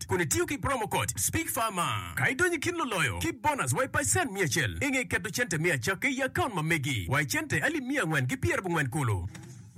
Code kun itiyo ki promo code SPEAKPHARMA ka idonyo i kin luloyo ki bonus wa i pacen miya acel inge keto cente me acakki i akaunt ma megi wa i cente alip miya angwen ki pyer abongwen kulu.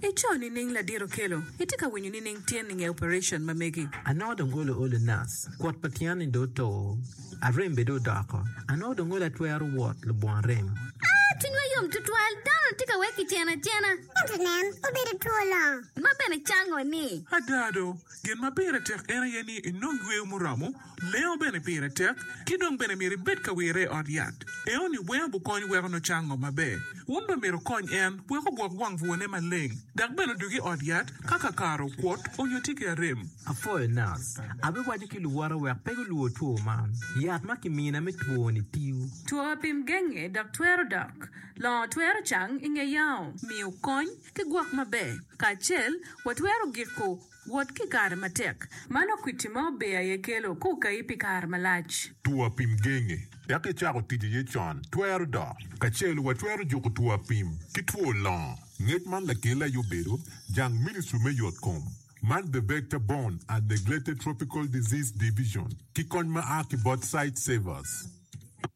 I co nining ladiro kelo? Itye ka winyo nining tyen inge operation ma megi? Anongo dong olo olo nas, kwot pa tyen ni dong oto, arem bene dong odoko, anongo dong olo atwero wot lubwon remo. Aa, cwinywa yom tutwal, dano ni tye ka wek kiceno acena. Ento nen, obedo two longo. Ma bene cango ni. Ada do, Gin ma pire tek en aye ni inong yweyo muromo, lengo bene pire tek, ki dong bene myero ibed ka wirre i ot yat. Enoni weng gukony weko nucang ngo maber. Wun bene myero wukonny en wek ogwok wang bwone maleng, dok bene odug i ot yat ka kakare okwot onyo tye ki arem. Apwoyo nas. Abiwaco ki luwota wek pe gulwor two man. Yat ma kimina me twoni tiyo. Two apim genge dok twero dok. Longo twero cang inge yao. Miyo kony. Ki gwok maber kacel, watwero giko wot ki kare matek. Mano kwiti ma ober aye kelo ka okayi pi kare malac. Two apim genge tek icako tic iye con twero dok. Kacel watwero juko two apim ki two longo. Ngec man lakelli aye obedo jang Ministry me Yotkom man The Vector Borne and Neglected Tropical Disease Division ki kony ma a ki bot Sightsavers.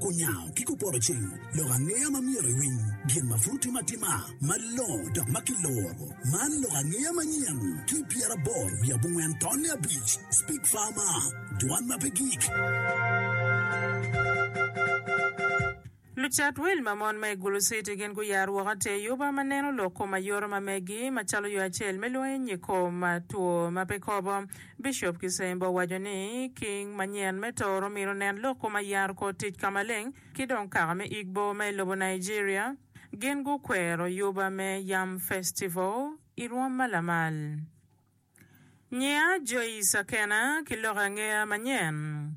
Onyango ki kupoto ceng lok angeya ma myero iwiny gin ma pud timo atima malongo dok ma kiluro. Man lok angeya manyen ki pyera aboro wiye abongwen tonne abic. Speak Farmer, Dwan ma pe gik. Lucat wil ma mon ma i Gulu City gin guyaro woko atir yuba ma neno lok kom ayoto ma megi, macalo yo acel me lwongo iye nyig kom two ma pe kobo. Bicop Kisembo owaco ni, King manyen me Tooro myero onen lok kom ayaro kor tic ka maleng ki dong kaka me Igbo ma i lobo Nigeria. Gin gukwero yuba me Yam Festival i rwom ma lamal. Nyiya Joyce Akena ki loke angeya manyen.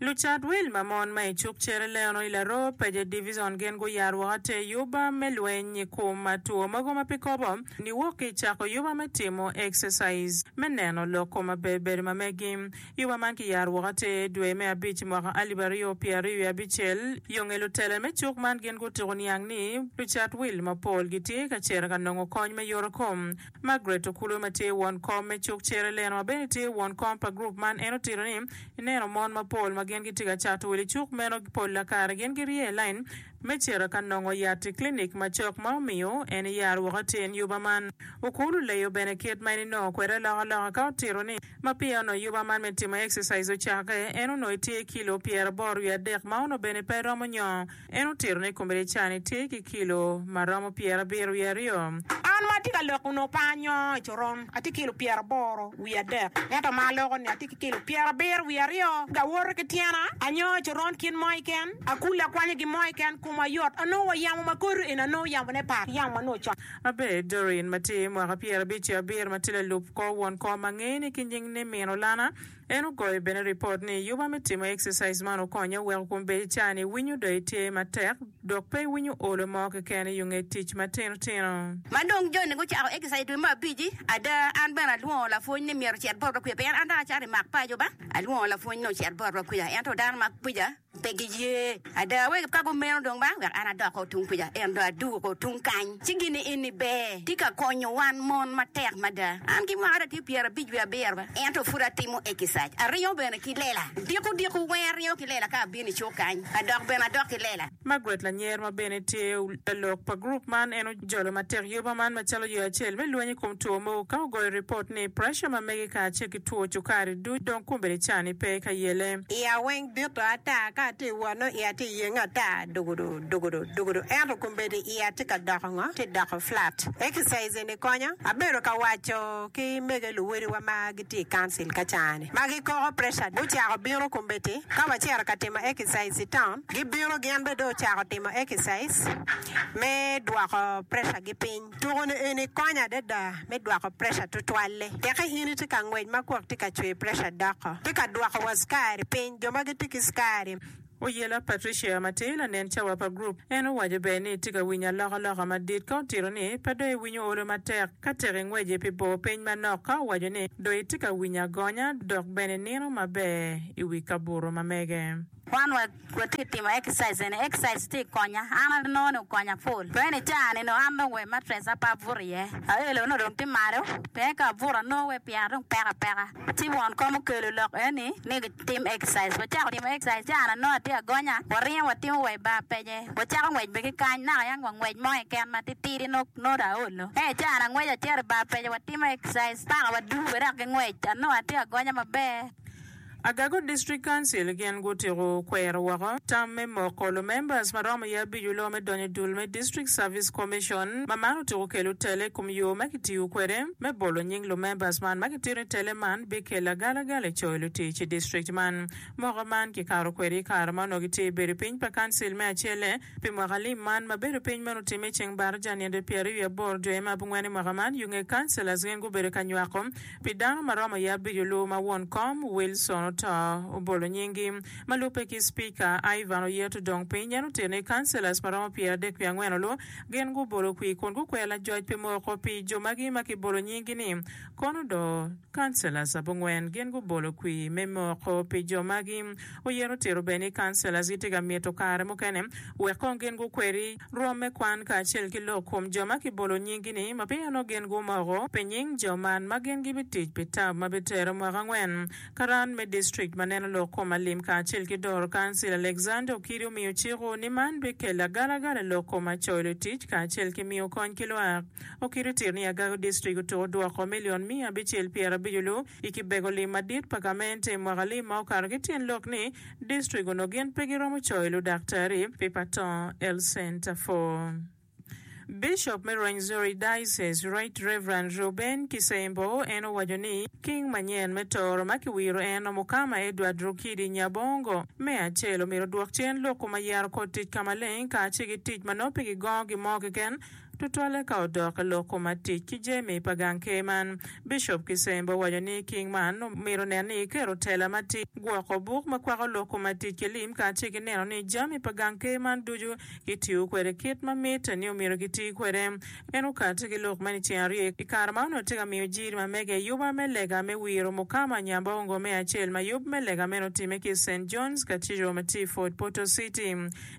Lucat wil ma mon ma i cuk Cereleno i Laroo Paje Divison gin guyaro woko atir yuba me lweny i kom ma two mogo ma pe kobo niwok ki i cako yuba me timo exercise me neno lok kom ma ber bedo ma megi. Yuba man ki yaro woko atir dwe me abic mwaka alip aryo pye aryo wiye abicel. Yo nge lutela me cuk man gin gutuku niang ni lucat wil mapol gitye ka cito ka nongo kony me yoto kom. Margaret Okulwe ma tye won kom me cuk Cere Leno ma bene tye won kom pa gurup man en otito ni, Ineno mon mapol ma gin gitye ka cato wil i cuk meno polla kare gin girye i lain me cito ka nongo yat i klinik macok ma omiyo en eyaro woko i tyen yuba man. Okul oleyo bene kit ma en enongo kwede alokaloka ka otito ni, Ma peya onongo yuba man me timo exercise ocakke, en onongo etye kilo pyeraboro wiye adek ma onongo bene pe romo nyongo En otito ni kombedecane tye ki kilo ma romo pyerabiro wiye aryo. An ma atye ka lok onongo pe anyoo i coron, atye ki kilo pyeraboro wiye adek. Ento ama aloko ni atye ki kilo pyerabiro wiye aryo, gawoto ki tyena, anyoo i coron kit mo keken, akule akwanyo gin mo keken, koma yot. Anongo wa yamo ma kodo eni anongo yamone par ki yamo ma nongo ocok. Abed, Doreen ma tye mwaka pyerabic ki abiro ma tye lalub kor won kom ma ngeye ni ki nying ni Min Olana, En ogoyo bene ripot ni, Yuba me timo exercise man okonya weko kun bed icar ni iwinyo do itye matek dok pe iwinyo olo mo keken i yunge tic matino tino. Ma dong Johnny gucako exercise i dwe me abic-ci, ada, an bene alwongo lapwony ni myero ocit bot Rokuya pien an dong acato i mak paco ba. Alwongo lapwony ni ocit bot Rokuya, ento dano mak kwija. Pe giye ada wek ka gumeno dong ba wek an adok o tung kuca, ento adwogo o tung kany. Ci gin ni, Enni ber, tye ka konyo wan mon matek mada. An ki mara tye pyerabic wiye abiro, ento pud atimo ekicaij. Aringo bene ki lela. Diko diko weng aringo ki lela ka abino i cuk kany, adok bene adok ki lela. Margaret Lanyer ma bene tye lalok pa gurup man en Jolo matek yoba man macalo yo acel me lweny i kom two mogo ka ogoyo ripot ni presha ma mege kacel ki two cukari duc dong kombeddi ca ni pe ka yele. Iya weng bito ata ka atye i wot nongo iya tye yenge ata dugudu dugudu dugudu ento kombeddi iya tye ka doko ngo? Tye doko flat. Exercise eni konya. Abedo ka waco ki mege luwodiwa ma gitye i council ka caa ni. ma gikoko preca gucako bino kombeddi. Ka wacito ka timo exercise i taun, gibino gin bene dong ocako timo exercise me dwoko precagi piny. Tuku-ni eni konyo adada me dwoko preca tutwal-li. Tekki in itye ka ngwec ma gwok tye ka cwer preca doko, tye ka dwoko wa cukari piny, jo ma gitye ki cukari. Oyela Patricia ma tye lanen cawa pa gurup, en owaco ber ni itye ka winyo alokaloka madit ka otito ni pe dong iwinyo olo matek ka tek ingweci pi bor piny manok ka owaco ni dong itye ka winyo agonya dok bene inino maber i wi kabuto ma mege. Wan watye ka timo exercise eni, exercise tye ka konya, an anongo ni okonya full pien i caa ni nongo an dong wa i mattress aye pe abuto iye, aelo nongo dong tye malo pien ka abuto anongo wai pyera dong peko apeka. Ci won kom okelo lok eni ni gitim exercise. Wacako timo exercise ci an anongo atye agonya. Waringo watimo wa i bar pece. Wacako ngwec bene ki kany. Naka yang wangwec mo keken matitidi nongo nongo dong aolo. Ee, ci an angweco acito i bar pece watimo exercise paka waduru bene dok ki ngwec. Anongo atye agonya maber. Agago District Council gin gutiko kwero woko tam me moko lumembers ma romo iye abico loo me donyo i dul me District Service Commission ma man otyeko kelo tele i kom yo ma kitiyo kwede. me bolo nying lumembers man ma gitito i tele man bikelo agalagala i coyo lutic i district man. Moko man kikato kwede i kare ma onongo gitye i bedo piny pa Council me acelle pi mwaka lim man ma bedo piny meno otimme i ceng Barija ninde pyera wiye aboro dwe me abongwen i mwaka man. Yunge Councillors gin gubedo ka nywako pi dano ma romo i abico luwo ma won kom, Wilson oto, obolo nying gi. Ma lubbe ki Speaker, Ivan Oyeto dong piny en otito ni Councillors ma romo pyera adek wiye angwen olu Gin gubolo kwir kun gukweyo lajoc pi moko pi jo magi ma kibolo nyinggi ni, Kono do, Councillors abongwen. Gin gubolo kwir me moko pi jo magi. Oyero tito bene ni Councillors gitye ka mito kare mukene wek kong gin gukweri rwom me kwan kacel ki lok kom jo ma kibolo nyinggi ni ma pien onongo gin gumoko pi nying jo man ma gin gibitic pi tam ma bitere mwaka angwen. Karan me district ma neno lok kom alim kacel ki doro kancil Alexander Okidi omiyo ciko ni man bikello agalagala i lok kom acoyo lutic kacel ki miyo kony ki lwak. Okidi otito ni Agago district otuko dwoko million miya abicel pyerabico lu i kibego lim madit pa gamente i mwaka alim ma okato ki tyen lok ni district onongo gin pe giromo coyo ludaktari pi patong lcenter for Bicop me Rwenzori Diocese, Right Rev. Reuben Kisembo en owaco ni King manyen me toro ma kiwiro en Omukama Edward Rukidi Nyabongo, me acel omyero odwok cen lok kom ayero kor tic ka maleng kace ki tic ma nongo pe gigongo gi mo keken tutwalle ka odok i lok kom atic ki jemi pa gang ker man. Bicop Kisembo owaco ni King man omyero onen ni ekero tela ma tic, gwoko buk ma kwako lok kom atic ki lim kace ki neno ni jami pa gang ker man ducu Gitiyo kwede kit ma mitte ni omyero giti kwede. En okatte ki lok meno i ceng aryo i kare ma onongo tye ka miyo jiri ma mege i yub ma me lega me wiro Mukama Nyambongo me acel ma yub me lega meno otimme ki i Saint John's Cathedral ma tye i Fort Portal City,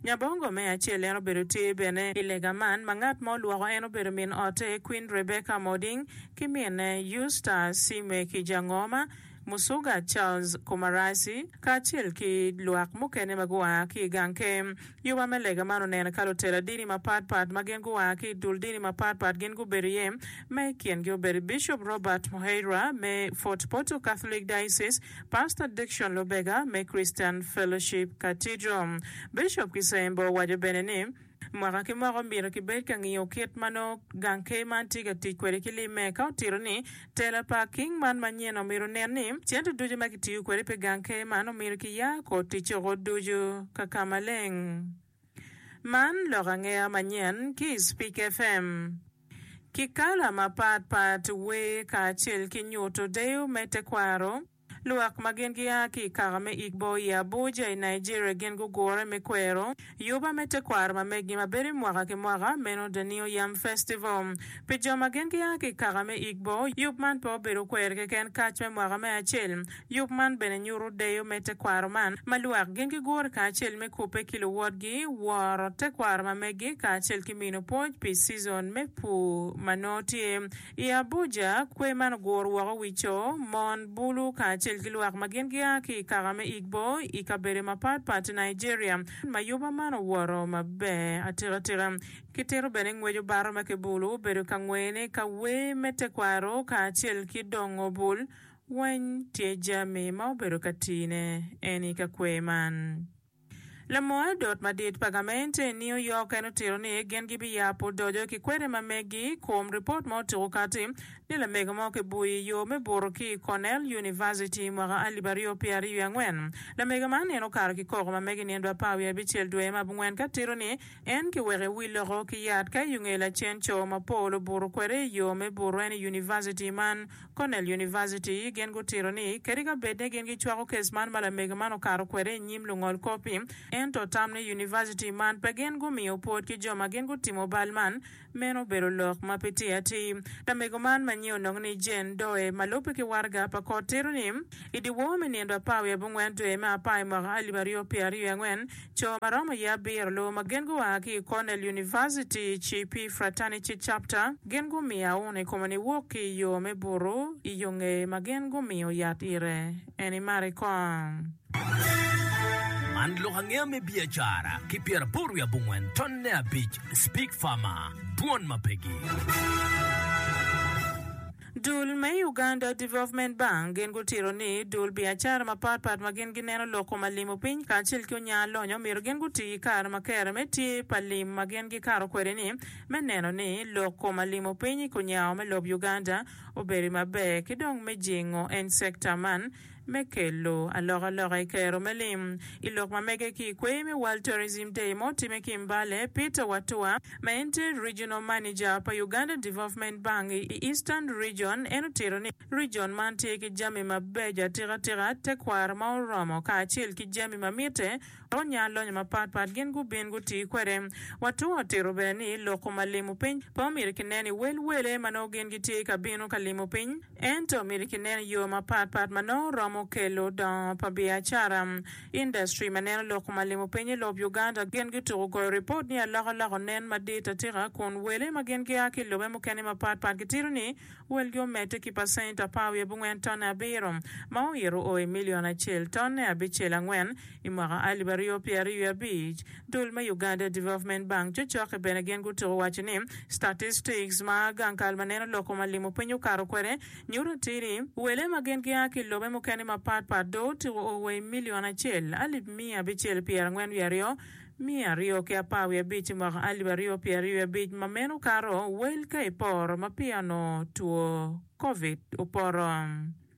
Nyambongo me acel. En obedo tye bene i lega man ma ngat ma olwoko en obedo min ote Queen Rebecca Moding ki minne Eustace Simwe Kijangoma. Musuga Charles Kumarasi kacel ki lwak mukene ma gua ki i gang kem. Yuba me lega man onene ka lutela dini mapat pat ma gin gua ki i dul dini mapat pat gin gubedo iye, ma i kingi obedo Bishop Robert Muheirwa me Fort Portal Catholic Diocese, Pastor Dickson Lubega me Christian Fellowship Cathedral. Bishop Kisembo owaco bene ni, Mwaka ki mwaka omyero kibed ka ngiyo kit ma nongo gang ker man tye ka tic kwede ki limme. Ka otito ni, Tela pa king man manyen omyero onen ni cente ducu ma kitiyo kwede pi gang ker man omyero kiya kor ticce oko ducu ka ka maleng. Man lok angeya manyen ki i Speak FM. Ki kala mapat pat wer kacel ki nyuto deyo me tekwaro. Lwak ma gin gia ki i kaka me Igbo i Abuja i Nigeria gin gugure me kwero yuba me tekwaro ma meggi ma bedo i mwaka ki mwaka, meno Danio Yam Festival. Pi jo ma gin gia ki i kaka me Igbo, yub man pe obedo kwero keken kac me mwaka me acel. Yub man bene nyuto deyo me tekwaro man ma lwak gin gigure kacel me kubbe ki luwotgi, woro tekwaro ma meggi, kacel ki mino pwoc pi cizon me pur ma nongo tye. I Abuja, kwer man oguro woko wi co, mon, bulu kacel ki lwak ma gin gia ki i kaka me Igbo i kabedo mapat pat i Nigeria. Ma yuba man owoto maber atika tika. Kitito bene ngweco baro ma kibulu obedo ka ngwene ka wer me tekwaro kacel ki dongo bul weny tye jami ma obedo ka tine en i ka kwer man. Lamoyo dot madit pa gamente New York en otito ni gin gibiyabo doco ki kwede ma megi i kom ripot ma otuko kati ni lamego mo kibuyo i yo me buto ki i Cornell Univaciti i mwaka alip aryo pyera aryo i angwen. Lamego man en okato ki koko ma megi nino apar wiye abicel dwe ma abungwen ka tito ni en kiweko i wi loko ki yat ka i unge lacen co ma pol obuto kwede i yo me buto en i univaciti man Cornell University gin gutito ni kadi ka bed ni gin gicwako kes man ma lamege man okato kwede i nyim lungol kop-pi, ento tam ni University man pe gin gumiyo pwod ki jo ma gin gutimo bal man, meno obedo lok ma pe tye atir. Lamego man ma nyinge onongo ni Jane Doe ma lubbe ki waraga pa kot tito ni, I dyewor me nino apar wiye abongwen dwe me apar i mwaka alip aryo pyeraryo i angwen, Co ma romo ye abiro lubo ma gin gua ki i Cornell University Chi Pi Fraternity Chapter, gin gumiya uno i kome ni wok ki i yo me buto i yo ngeye ma gin gumiyo yat ire. En imari kong. Man lok angeya me biacara ki pyeraboro wiye abongwen ton ne abic, Speak Farmer, Twon ma pegi. Dul me Uganda Development Bank gin gutito ni dul biacara mapatpat ma gin gineno lok kom alim opiny kacel ki onya alonyo myero gin guti ki kare ma kere me tye pa lim ma gin gikato kwede ni me neno ni lok kom alim opiny i kunyao me lob Uganda obedo maber ki dong me jingo en sector man me kelo alokaloka i kero me lim i lok ma mege ki i kweyo me World Tourism Day ma otimme ki i Mbale, Peter Watua, ma en tye Regional Manager pa Uganda Development Bank i Eastern Region, en otito ni, Region man tye ki jami mabeco atikatika, tekwaro ma oromo, kacel ki jami ma mitte dok nyalonyo mapatpat gin gubin guti kwede. Watua otito bene ni, Lok kom ma limo piny pe omyero kineno i wel wele ma nongo gin gitye ka bino ka limo piny, Ento myero kinen yo mapat pat ma nongo romo kelo dongo pa biacara. Industry ma neno lok ma limo piny i lob Uganda gin gituko goyo ripot ni alokaloka onen madit atika kun wele ma gin gia ki i lobe mukene mapat pat gitito ni welgi omedde ki pacent apar wiye bongwen tonne abiro ma oito o i milion acel tonne abicel angwen I mwaka alip aryo pyera ryo i abic, dul me Uganda Development Bank, cocoki bene gin gutuko waco ni, Statistics ma gang kal ma neno lok koma limo piny okato kwede nyuto atir ni, wele ma gin gia ki i lobe mukene mapat pat dong otuko o wa i milion acel, alip miya abicel pyera angwen wiye aryo, miya aryo ki apar wiye abic i mwaka alip aryo pyera ryo i abic ma meno kato wel ka i poro ma peya onongo two Covid opoto.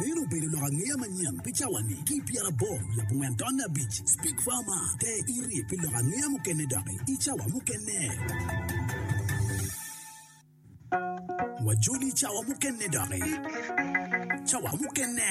Meno obedo lok angeya manyen pi cawa-ni. Ki i pyeraboro labongen tonne abic, Speak Farmer, te iri pi lok angeya mukene doki i cawa mukene. Wajoli i cawa mukene doki. Cawa mukene.